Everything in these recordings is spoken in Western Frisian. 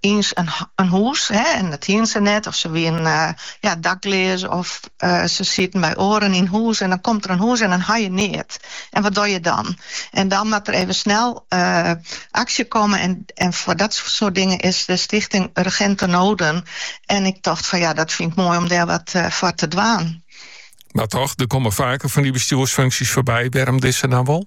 in hûs en dat hiene se net, of se wienen dakleas of se sieten by oaren yn hûs en dan komt der in hûs en dan ha je neat. En wat do je dan? En dan moat der even snel aksje komme en foar dat soart dingen is de Stichting Urgente Noden. En ik tocht fan ja, dat fyn ik moai om dêr wat foar te dwaan. Mar toch, der komme faker fan dy bestjoersfunksjes foarby. Wêrom dizze dan wol?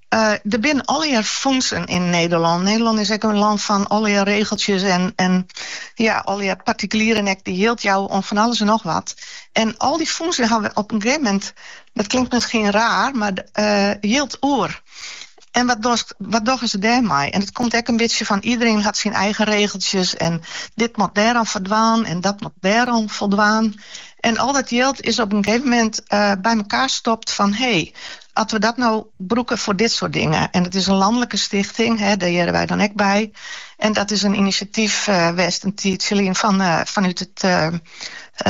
Der binne allegear fûnsen yn Nederlân. Nederlân is ek in land fan allegear regeltsjes en allegear partikulieren ek, dy't jild jouwe oan fan alles en noch wat. En al dy fûnsen hawwe op in gegeven moment, dat klinkt miskien raar, mar jild oer. En wat dochst, wat dogge se dêrmei? En it komt ek in bytsje fan iedereen hat syn eigen regeltsjes en dit moat dêroan foldwaan en dat moat dêroan foldwaan. En al dat jild is op in gegeven moment by mekaar stopt fan, hey, As we dat no brûke foar dit soart dingen. En it is in lanlike stichting, dêr hearre wy dan ek by. En dat is in inisjatyf west in tiidsje lyn fanút de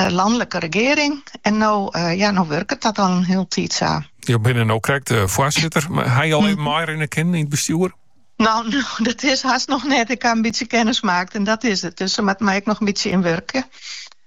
lanlike regearing. En no ja, no wurket dat al in hiele tiid sa. Jo binne no krekt foarsitter. Haw je al even meirinne kinnen yn it bestjoer? No, no, dat is hast noch net. Ik haw in bytsje kennis maakt en dat is it. Dus se moatte my ek noch in bytsje ynwurkje.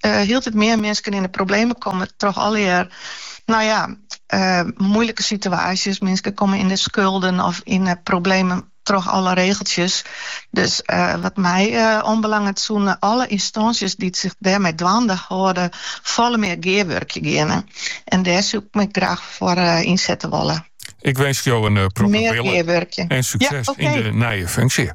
hieltyd mear minsken yn de problemen komme troch allegear, no ja, moeilike situaasjes. Minsken komme yn de skulden of yn de problemen troch alle regeltsjes. Dus wat my oanbelanget soene alle ynstânsjes dy't sich dêrmei dwaande hâlde folle mear gearwurkje geane. En dêr soe ik my graach foar ynsette wolle. Ik winsk jo in protte wille en sukses yn de nije funksje.